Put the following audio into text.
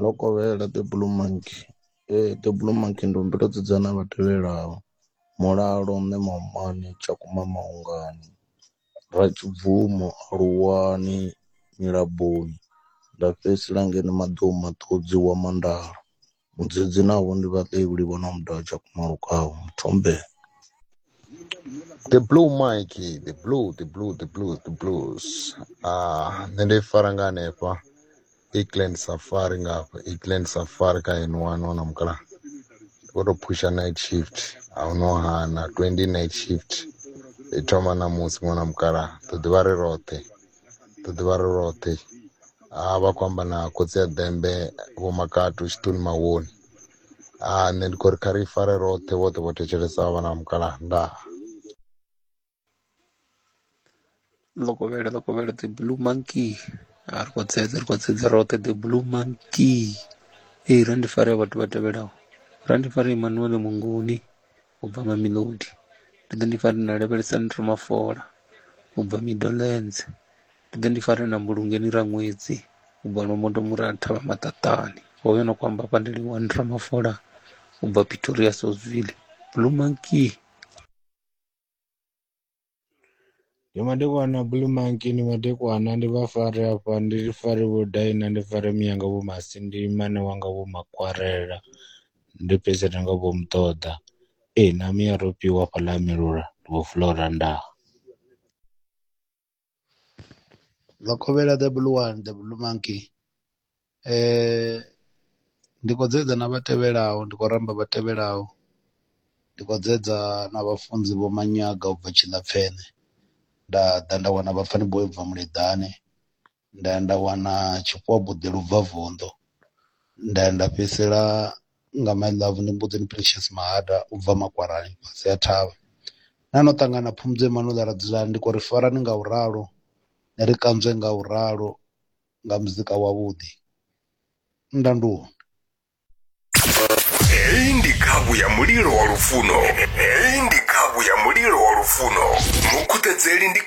Ḽo kovhela The Blue Monkey. The Blue Monkey ndi humbela u dzudza na vha tevhelaho, Mulalo, Mme Maomane, Tshakhuma Maongani, Ratshibvumo Aluwani, Nyilaboni nda fhedzisela ngeno Maḓou Maṱudzi Wa Mandalo. Mudzidzi navho ndi vhaḽevhuli vho no muda tsha kumalukaho muthombe. The blue mic, the blue, the blue, the blue, the blues. Ah, nṋe ndi fara nga hanefha. Eastland Safari nga hafha, Eastland Safari kha N1 wana mukala. Vho to pusha night shift, a hu no hana 20 night shift. I thoma ṋamusi ṅwana mukala, ḓo ḓivha ri roṱhe. ḓo ḓivha ri roṱhe a vha khou amba na khotsi ya ḓembe vho makatu tshiṱuni mawoni a nṋe ndi khou ri kha ri fare roṱhe vhoṱhe vho thetshelesa vhana vha mukalaha ndaa lokovhele lokovhele the blue monkey a ri khou tsedze ri khou tsedze roṱhe the blue monkey ee ra ndi fare vhathu vha tevhelaho ra ndi fare emmanuele munguni u bva mamelodi ndi ḓo ni fara na lavhelesa ni ri mafola u bva midolens ndi ḓo ni fara na mbulungeni ra ṅwedzi u bva lombondo mura thavha maṱaṱani hoyo no kwamba pandeliwa ni ra mafola u bva pretoria sosville blue monkey Ndi madekwana Blue Monkey ndi madekwana ndi vha fare hafha ndi fare vho Daina ndi fare Miyanga vho Masindi mmane wanga vho Makwarela ndi fhedze na nga vho Muṱoḓa ee na Miya Rofhiwa hafhaḽa ha Milula vho Fulora Ndaa. Vhakovhela the blue one the blue monkey ndi khou dzedza na vha tevhelaho ndi khou ramba vha tevhelaho ndi khou dzedza na vhafunzi vho Manyaga ubva Tshilapfene nda ḓa nda wana vhapfani boi ubva Muleḓane nda ya nda wana Tshifhowa Buḓi lubvavunḓu nda ya nda fhedzisela nga my love ndi mbudzini Precious Mahaḓa ubva makwarani fhasi ha thavha, na no ṱangana Phumudzo Emanuel Radzulani ndi khou ri farane nga u ralo ni ri kanzwe nga u ralo nga muzika wavhuḓi nda ndi hone. Heyi ndi khavhu ya mulilo wa lufuno heyi ndi khavhu ya mulilo wa lufuno mukhuṱedzeli ndi